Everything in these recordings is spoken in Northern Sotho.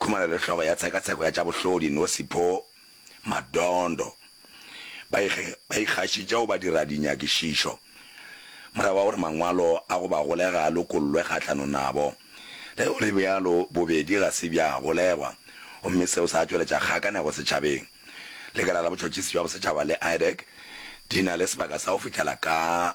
Khumalo le hlogo ya tshekatsheko ya tša bohlodi Nosipho Madondo ba ikgašitše go badiradinyakišišo morago ga gore mangwalo a go ba golega a lokollwe kgahlanong nabo. Le ge go le bjalo, bobedi ga se bja golegwa gomme seo sa tšweletša kgakanego setšhabeng. Lekala la Botšhotšhisi bja Bosetšhaba le IDEC di na le sebaka sa go fihlela ka.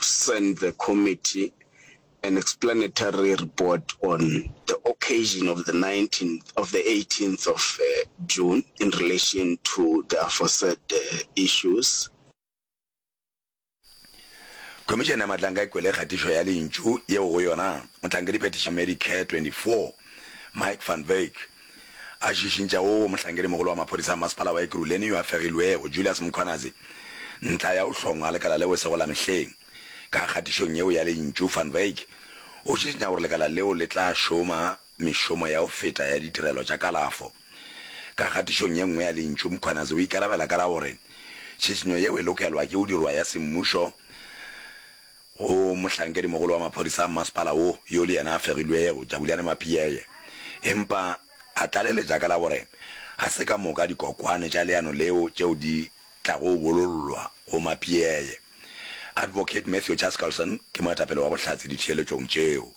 send the committee an explanatory report on the occasion of the 19th of the 18th of June in relation to the aforesaid issues. Khomišene ya Matlanga e kwele kgatišo ya lentšu yeo go yona mohlankediphetiši Mary Kerr, 24, Mike van Wyk, a šišintšha wo mohlankedi-mogolo wa maphodisa a Masepala wa Ekurhuleni yo a fegilwego, Julius Mkhwanazi, ntlha ya go hlongwa ga lekala leo e sego la mehleng. Ka kgatišong yeo ya lentšu, Van Wyk o šišinya gore lekala leo le tla šoma mešomo ya go feta ya ditirelo tša kalafo. Ka kgatišong ye nngwe ya lentšu, Mkhwanazi o ikarabela ka la gore tšhišinyo yeo e lokelwa ke go dirwa ya semmušo, Go mohlankedimogolo wa maphodisa a mmasepala wo, yo le yena a fegilwego, Jabulani Mapiyeye, empa a tlaleletša ka la gore ga se ka moka dikokwane tša leano leo tšeo di tlago bolollwa go Mapiyeye. Advocate Matthew Chaskalson ke moetapele wa Bohlatse ditheeletšong tšeo.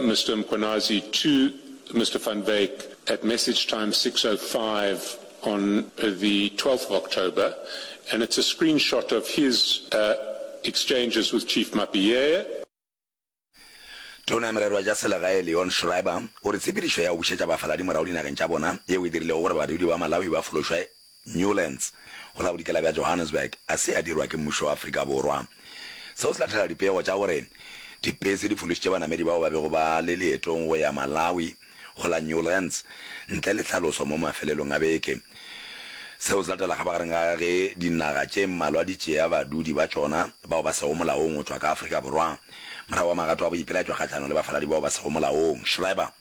Mister Mkhwanazi to Mister Van Wyk at message time 6:05 on the 12th of October and it's a screenshot of his exchanges with Chief Mapiyeye. Tona ya Merero ya Selegae Leon Schreiber o re tshepedišo ya go bušetša bafaladi morago dinageng tša bona yeo e dirilego gore badudi ba Malawi ba fološwe Newlands, go la bodikela bja Johannesburg a se a dirwa ke mmušo wa Afrika Borwa. Seo se lahlela dipego tša gore dipese di fološitše banamedi bao ba bego ba le leetong go ya Malawi go la Newlands ntle le tlhaloso mo mafelelong a beke. Seo se latela kgabagareng ga ge dinaga tše mmalwa di tšea badudi ba tšona bao ba sego molaong go tšwa ka Afrika Borwa morago ga magato a boipelaetšo kgahlanong le bafaladi bao ba sego molaong. Schreiber.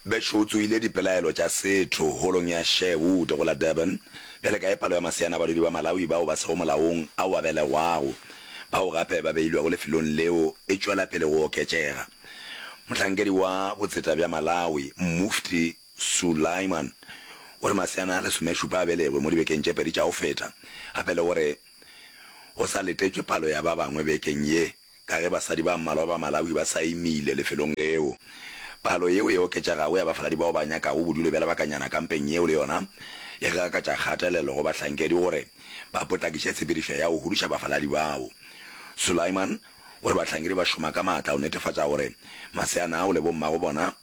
Bešo o tsoile dipelaelo tša setho Holong ya Sherwood go la Durban. Bjale kae palo ya maseana a badudi ba Malawi bao ba sego molaong ao a belegwago, bao gape ba beilwego lefelong leo, e tšwela pele go oketšega? Mohlankedi wa botseta bja Malawi, Mufti Sulaiman, o re maseana a lesomešupa a belegwe mo dibekeng tše pedi tša go feta, gape le gore go sa letetšwe palo ya ba bangwe bekeng ye. Ka ge basadi ba mmalwa ba Malawi ba sa imile lefelong leo, palo yeo e oketšegago ya bafaladi bao ba nyakago bodulo bja lebakanyana kampeng yeo le yona e gakatša kgatelelo go bahlankedi gore ba potlakiše tshepedišo ya go huduša bafaladi bao. Sulaiman o re bahlankedi ba šoma ka maatla go netefatša gore maseana ao le bommago bona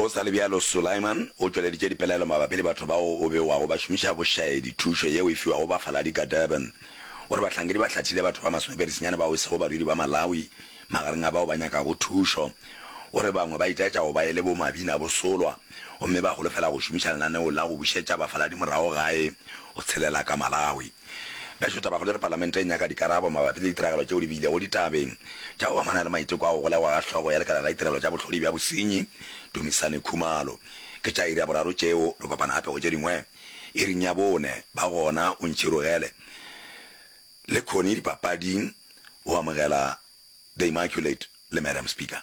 Go sa le bjalo, Sulaiman o tšweleditše dipelaelo mabapi le batho bao o bewago ba šomiša bošaedi thušo yeo e fiwago bafaladi ka Durban. O re bahlankedi ba hlathile batho ba masomepedisenyane bao e sego badudi ba Malawi magareng a bao ba nyakago thušo. O re bangwe ba itaetša go ba e le bomabina bosolwa gomme ba holofela go šomiša lenaneo la go bušetša bafaladi morago gae go tshelela ka Malawi. Bešo Tabagolo e re Palamente e nyaka dikarabo mabapi le ditiragalo tšeo di bilego ditabeng tša go amana le maiteko a go golegwa ga hlogo ya lekala la ditirelo tša bohlodi bja bosenyi Dumisani Khumalo. Ke tša iri ya boraro tšeo, re kopana gape go tše dingwe iring ya bone. Ba gona o ntšhirogele le Connie dipapading go amogela The Immaculate le Madam Speaker.